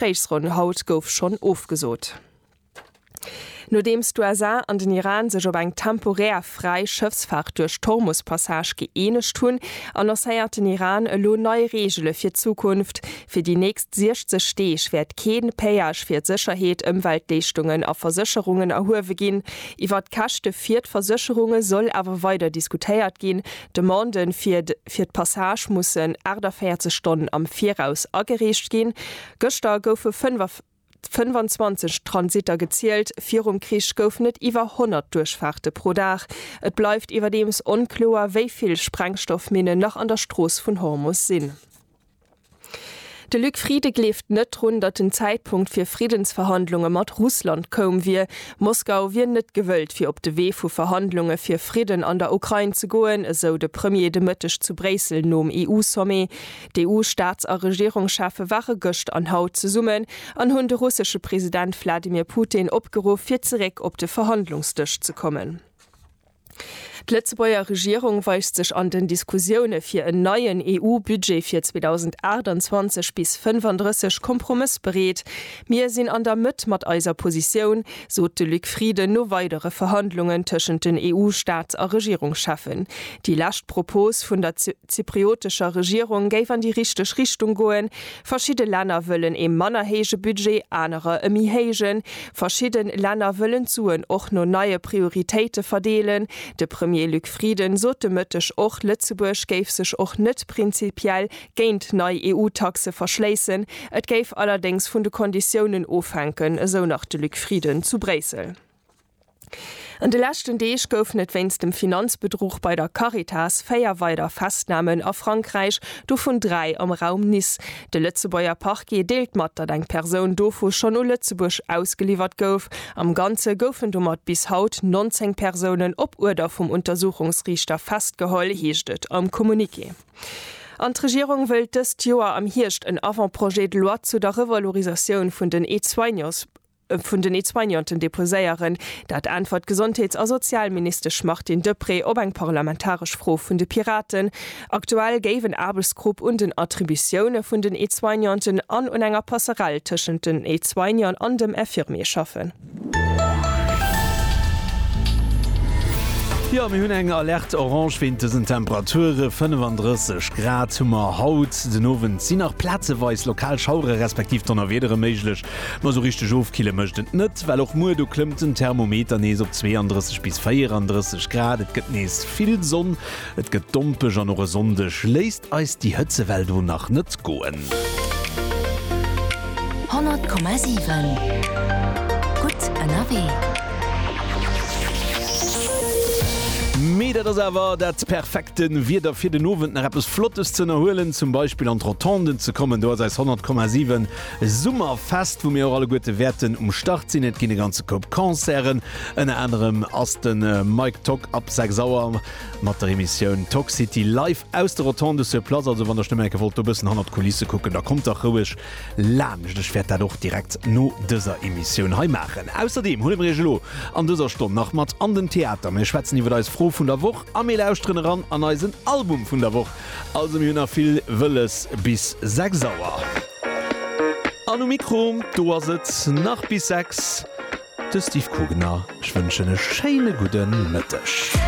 D'Gespréichsronn haut gouf schonn ofgesot, nodeems d'USA an den Iran sech op eng temporär fräi Schëffsfaart duerch d'Hormus-Passage gëeenegt hunn, annoncéiert den Iran elo nei Reegele fir d'Zukunft, Fir déi nächst 60 Deeg wäert kee Péage fir d'Sécherheet, Ëmweltleeschtungen a Versécherungen erhuewe ginn. Iwwer d'Käschte fir d'Versécherunge soll awer weider diskutéiert ginn, D'Demande fir fir d'Passage mussen 48 Stonnen am Viraus agereecht ginn. Gëschter goufe 25 Transitter gezielt, virum Krich goufen et iwwer 100 Duerchfaarte pro Dag. Et bleift iwwerdeems onkloer, wéi vill Sprengstoffminnen nach an der Strooss vun Hormus sinn. De Luc Frieden gleeft net drun, datt den Zäitpunkt fir Friddensverhandlunge mat Russland koum wier. Moskau wier net gewëllt fir op de Wee vu Verhandlunge fir Fridden an der Ukrain ze goen, esou de Premier de Mëtteg zu Bréissel nom EU-Sommet. D'EU-Staats a Regierungscheffe ware gëscht an haut zesummen an hunn de russesche President Wladimir Putin opgeruff fir zeréck op de Verhandlungsdësch ze kommen. D'Lëtzebuerger Regierung weist sech an den Diskussioune fir en neien EU-Budget fir 2028 bis 35 kompromëssbereet. Mir sinn an der Mëtt mat eiser Positioun, sot de Luc Frieden no weidere Verhandlungen tëschent den EU-Staats a Regierungscheffen. Déi lescht Propos vun der zypriotescher Regierung géif an déi richteg Richtung goen, Verschidde Länner wëllen ee manner héije Budget, anerer e méi héijen. Verschidde Länner wëllen d'Suen och no neie Prioritéite verdeelen. De Premier Luc Frieden sot de Mëtteg och, Lëtzebuerg géif sech och net prinzipiell géint nei EU-Taxe verschléissen. Et géif allerdéngs vun de Konditiounen ofhänken, esou nach de Luc Frieden zu Bréissel. An de leschten Deeg goufen et wéinst dem Finanzbedruch bei der Caritas véier weider Festnamen a Frankräich, dovun dräi am Raum Nice. De Lëtzebuerger Parquet deelt mat, datt eng Persoun dovu schonn u Lëtzebuerg ausgeliwwert gouf. Am Ganze goufen domat bis haut 19 Persounen op Uerder vum Untersuchungsriichter festgeholl, heescht et am Communiqué. An d'Regierung wëllt dëst Joer am Hierscht en Avant-projet de loi zu der Revalorisatioun vun den Aide-soignants vun den Aide-soignanten deposéieren. Dat äntwert d'Gesondheets a Sozialministesch Martine Deprez op eng parlamentaresch Fro vun de Piraten. Aktuell géif en Aarbechtsgrupp un den Attributioune vun den Aide-soignanten an un enger Passerell tëschent den Aide-soignant an dem Infirmier schaffen. Jo, mir hunn eng Alerte orange wéint dësen Temperature. 35 Grad hu mer haut den Owend. Sinn nach plazeweis lokal Schauere respektiv Donnerwiedere méiglech, Ma sou richteg ofkille mécht et net, well och muer do klëmmt den Thermometer nees op 32 bis 34 Grad. Et gëtt nees vill Sonn, et gëtt dompeg an och e Sonndeg léisst eis déi Hëtzewell do nach net goen. 100,7 gutt ënnerwee. Mee dat ass awer dat perfekte Wieder fir den Owend nach eppes Flottes ze ënnerhuelen, zum Beispill an d'Rotonden ze kommen. Do ass eis 100,7. E Summerfest, wou mir och alleguerte wäerten um Start sinn. Et ginn e ganze Koup Concerten, ënner anerem ass de Mike Tock ab 6 Auer mat der Emissioun Tock City live aus de Rotondes sur Place. Also wann der Stemmenke wollt do bëssen hannert d'Kulisse kucken, da kommt dach roueg laanscht. Ech wäert dat och direkt no dëser Emissioun hei maachen. Ausserdeem huele mir iech elo an dëser Stonn nach mat an den Theater, mir schwätzen iwwer eis Fro vun der Woch a mir lauschteren eran an eisen Album vun der Woch. Also mir hunn nach vill Wëlles bis 6 Auer. An um Mikro, do ass et nach bis 6, de Steve Kugner. Ech wënschen e schéine gudde Mëtteg.